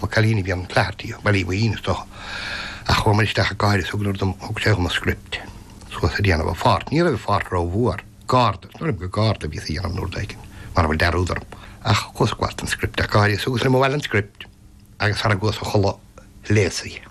Ba cailín a bhí ann, Clarty, ba í mo dhíon, is dócha. Ach chuamar isteach go háirithe is thugadar dom, thug sé dhom an script suas a' déanamh, a pháirt, ní raibh a pháirt rómhuar, garda, is dóigh liom gur garda a bhíos á dhéanamh nó rud éigin mara bhfuil dearúd orm. Ach chuas ag gabháilt don script go háirithe is thugas liom abhaile an script agus sara gcuas a chodladh, a léas í.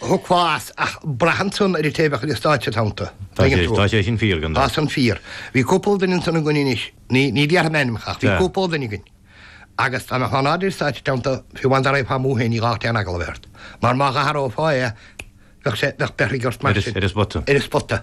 Tógfaidh sé ach braitheann san ar an té a bheadh ar an stáitse id theannta. Tá sé, tá sé sin fíor, go ndó. Tá san fíor. Bhí cúpla duine ansan againn anois, ní, ní déarfainn ainm ach bhí cúpla duine againn agus an fhaid a bheidís ar stáitse id theannta fiú amháin dá raghfá amú féin ní gá aon eagla a bheith ort mar má dh'athrófá é bheadh sé, bheadh beirthe ort mar sin. Ar a spota. Ar a spota.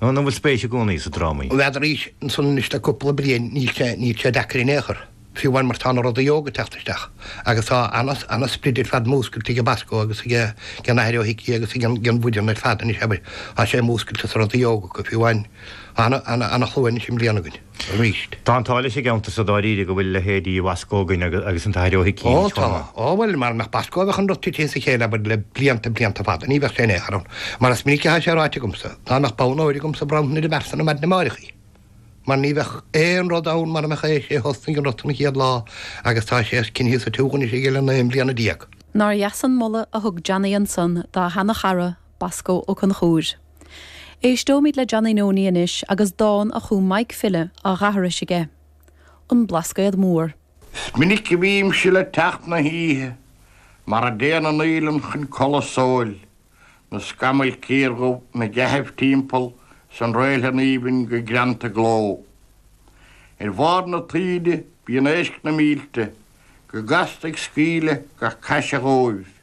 An bhfuil spéis i gcónaí sa drámaíocht? Arís ansan anois le cúpla bliain, níl sé, níl sé deacair in aon chor, fiú amháin mar tá na rudaí óga ag teacht isteach agus tá ana, ana sprid ar fad múscailte ag an mBosco agus ag ag an Athair Ó hIcí agus ag an bhfoireann ar fad anois, abair, tá sé múscailte sa rudaí óga acu, fiú amháin, ana, ana, ana shlua anois i mbliana againn. arís. Tá an t-ádh leis an gceantar so dáiríre go bhfuil leithéidí Bhosco againn agus an tAthair Ó hIcí anois chomh maith. Ó tá. Ó bhuel, mara mbeadh Bosco bheadh an rud tite as a chéile, abair, le blianta, blianta fada. Ní bheadh sé in aon chor ann. Mar is minic athá sé ráite agamsa, dá mbeadh bonn óir agamsa bhronnfainn ar an bhfear san maidin amáireach í. Mar ní bheadh aon rud ann mara mbeadh é, is é a thosnaigh an rud san an chéad lá agus tá sé coinnithe sa tsiúl anois aige le naoi mbliana déag. Nár dheas an moladh a thug Johnny ansan dá sheana-chara, Bosco Ó Conchúir. Éisteoimid le Johnny Noney anois agus dán a chum Maidhc File á dh'aithris aige, 'An Blascaod Mór'. Is minic a bhímse le teacht na hoíche Mar a dtéann an fhaoileann chun codladh sóil, Na scamaill ciardhubh 'na gcaitheamh timpeall 'S an réiltheann aoibhinn go greanta i gcló. Ar bharr na taoide bíonn éisc na mílte Go gasta ag scaoileadh gach caise dhóibh.